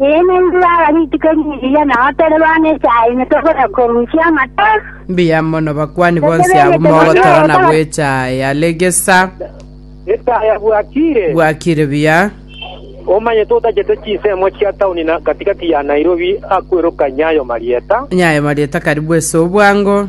Eena intwe baba rituko ri'ebiya nao tore bana echaine tokona korusia amata. Mbuya mono bakwani bonsi abwo mogotorana bw'echaaya. Regesa. Echaaya bwakire. Bwakire buya. Omanyete otachete chinsemo chia taoni na katikati ya Nairobi akoirokanye ayo marieta. Ayo marieta karibu ase obwango.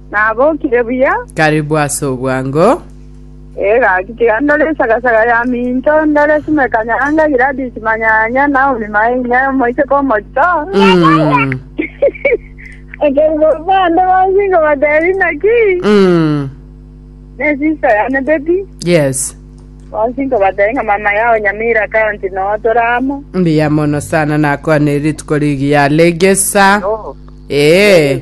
Nabokire buya. Karibu ase obwango. Ee gaki, tiga ndore esagasaga ya minto, ndore Sime Kanyanga, Gladys Manyanya, Naomi Mainga, Omoiseke Omochito. Mm. Ekero bande bonsi ngobatebi naki, Mm. ne sister yane baby. Yes. Bonsi ngobatebi nga mama yao Nyamira County no toramo. Mbuya mono sana nakwane rituko rigiya legesa. Ee.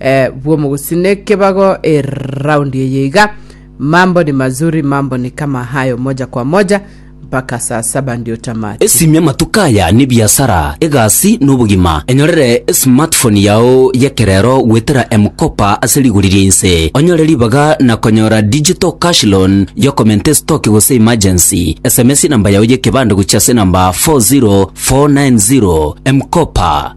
eh, bw'omogusii nekebago eraundi eye iga mambo ni mazuri mambo ni kama hayo moja kwa moja mpaka saa saba ndio tamati Esimia amatuko aya n'ebiasara, egasi, na obogima. Enyorere esmartphone yao y'ekerero goetera M-Kopa ase rigori ria inse. Onyore ribaga na konyora digital cash loan y'okomenta estoki gose emergency. SMS enamba yao y'ekebande gochia ase enamba 40490. M-Kopa.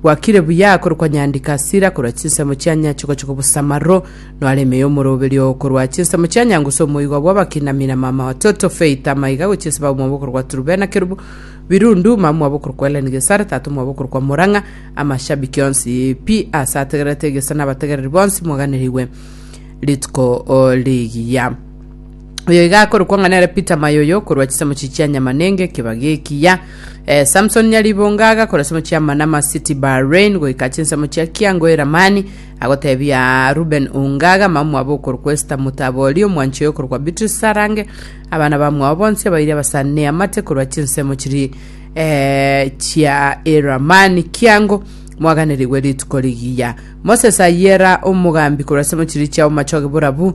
Gwakire buya korokwa nyandika sira korwa chinsemo chia nyache gocha kobosamaro, noare ime y'omoroberio oo korwa chinsemo chia nyangusu omoigwa bw'abakinami na mama watoto Faith amaiga gochia ase baba omwabo okorokwa Turubena Kerubu Birundu, mama omwabo okorokwa Ellen Gesare, tata omwabo okorokwa Murang'a. Amashabiki onsi pi aase ategererete egeso na abategereri bonsi moganerigwe rituko rigiya. Oyo iga akorokwa ng'a nere Peter Mayoyo korwa chisemo chi chia Nyamanenge kebagi ekiya. Eh, Samson Nyaribonga agakora semo chia Manama City Bahrain goika chinsemo chia Kiango Eramani agotebia Ruben Ongaga mamwabo okorokwa Esther Mutabori omwanchi oyo okorokwa Beatrice Sarange abana bamwabo bonsi abairi abasane amate korwa chinsemo chiri eh, chia Eramani Kiango mwaganerigwe rituko rigiya moses ayera omogambi korwa semo chiri chiao machoge borabu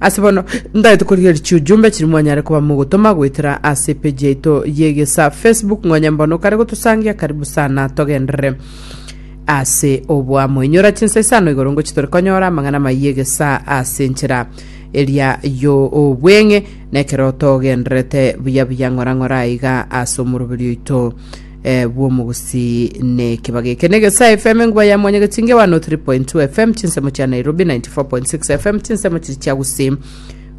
Ase bono ntagete korigereria chiujumbe chiria mwanyare koba mogotoma goetera ase epeji yaito y'egesa Facebook ng'onya mbono kare gotosangia karibu sana togenderere ase oboamo inyora chinsa isano igoro ngochi tore konyora amang'ana amaya egesa ase enchera eria y'obweng'e na ekero togendererete buya buya ng'ora ng'ora aiga ase omoroberi oito eh, bw'omogusii nekebaga eke negesae fm enguba ya mwanyagetinge 103.2 fm chinsemo chia nairobi 94.6 fm chinsemo chiri chia gusii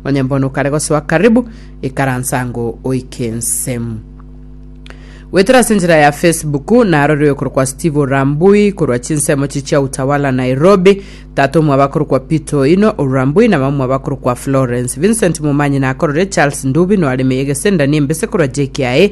onye mbono kare gosoa karibu ikaransango oikensemu wetera ase enchera ya facebook narorire korwa kwa steve orambui korwa chinsemo chiri chia utawala nairobi tata omwaba korwa kwa peter oino orambui na mama mwaba korwa kwa florence vincent momanyi nakorore charles ndubi noaremeye gesendani embese korwa jkiae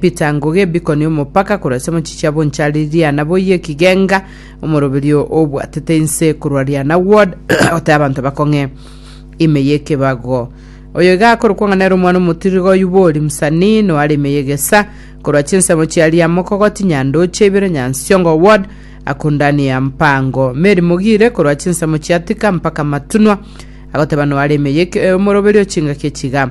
Peter Ngugi ebikoni omopaka korwa ase mochichi abo nchari Riana boyie ekigenga omoroberio obwatete inse korwa Riana ward goteba abanto bakong'e ime y'ekebago oyo iga akorokwa ng'a nere omwana omotiriga oyio bori msanii no are ime y'egesa korwa chinsemo chia Riamokogoti Nyandoche ibere Nyansiongo ward akundani ya mpango Mary Mogire korwa chinsemo chia Thika mpaka Matunwa agoteba no are ime y'eke- omoroberio chingaki echiga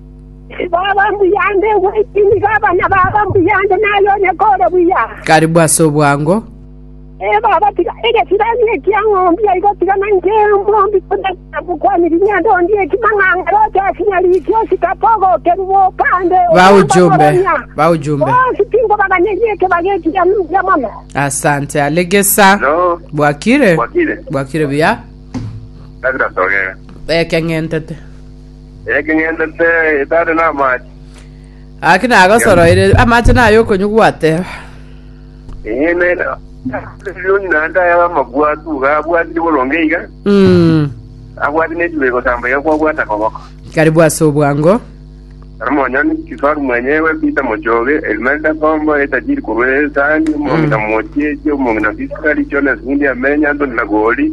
Baba mbuya nde gwechini baba na baba mbuya nde naye onye kore buya. Karibu ase obwango. Ee baba, tiga egesirani ekia ng'ombi aigo, tiga nainche omombi konyakera gokwaniri ng'ende ondie ekimang'ang'are oche ase nyariki osikape ogokerugwa okande Baujumbe, baujumbe. Bonsi tinkobaganyeria ekebage ekiya nobuya mono. Asante alegesa. No. Bwakire. Bwakire. Bwakire buya. Kabira togere. Ekeng'entete. Ekeng'endete etare namache. Gaki nagosoroire, amache naye okonywa gwateba. Enyene Sirioni naende aya amabwatu iga abwatire boronge iga, Mm. abwate nebibe gosamba iga kwabwata koboko. Kari bwase obwango. Armonyoni, Kifaru mwenyewe, Pita Mochoge, Elimelda Kombo, Etajiri korwa Esani, Omongi na Mochieche, Omongi na Fiskari, Jonas Mundi Amenya, Antoni Nagori,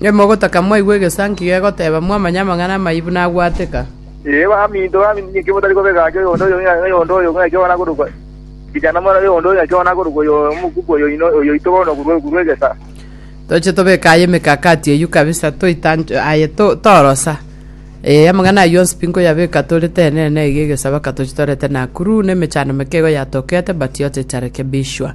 Nimogotaka mwaigwe egesanki gegoteeba, mwamanya amang'ana amaibu nagwateka. Ee, baminto, baminto, ninki motari kobeka ache oyonde oyo ng'a oyonde oyo ng'a ekio nakorokwa ekichanda, mwana oyonde oyo ng'a ekio nakorokwa oyo omokuku oyo oino oyo oito bono okorwa okorwa egesa? Toche tobeke aye emekakati eyio kabisa, toitanche aye to torosa. Ee, amang'ana ayio onsi pi nkoyabeka tore tenene iga egesaba ka toche torete Nakuru, na emechando meke igo yatokete, but yote itarekebishwa.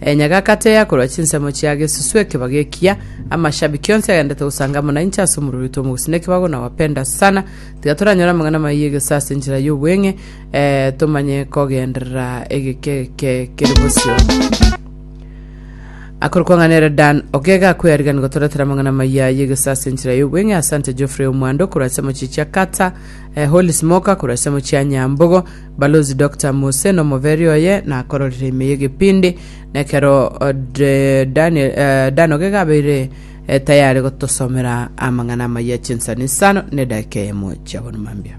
Enyagakati eye yakorwa chinsemo chia gesusu ekebago ekiya, amashabiki onsi agendete gosanga amo nainche ase omorweri oito omogusina ekebago na wapenda sana. Tiga toranyore amang'ana amaya egeso ase enchera y'obweng'e, eh, tomanye kogenderera egekeke kere bosio. Akore kwang'anera Dan Ogega akweyariganire gotoretera amang'ana amaya y'egeso ase enchera y'obweng'e. Asante Geoffrey Omwando korwa ase Mochichia Kata, eh, Holy Smoker korwa ase Mochia Nyambogo, Balosi Doctor Mose nomobere oye nakororire ime y'egebindi, na ekero Daniel, Daniel gegabeire tayare gotosomera amang'ana amaya chinsani isano nedaika eyemo chiabonwa mambia.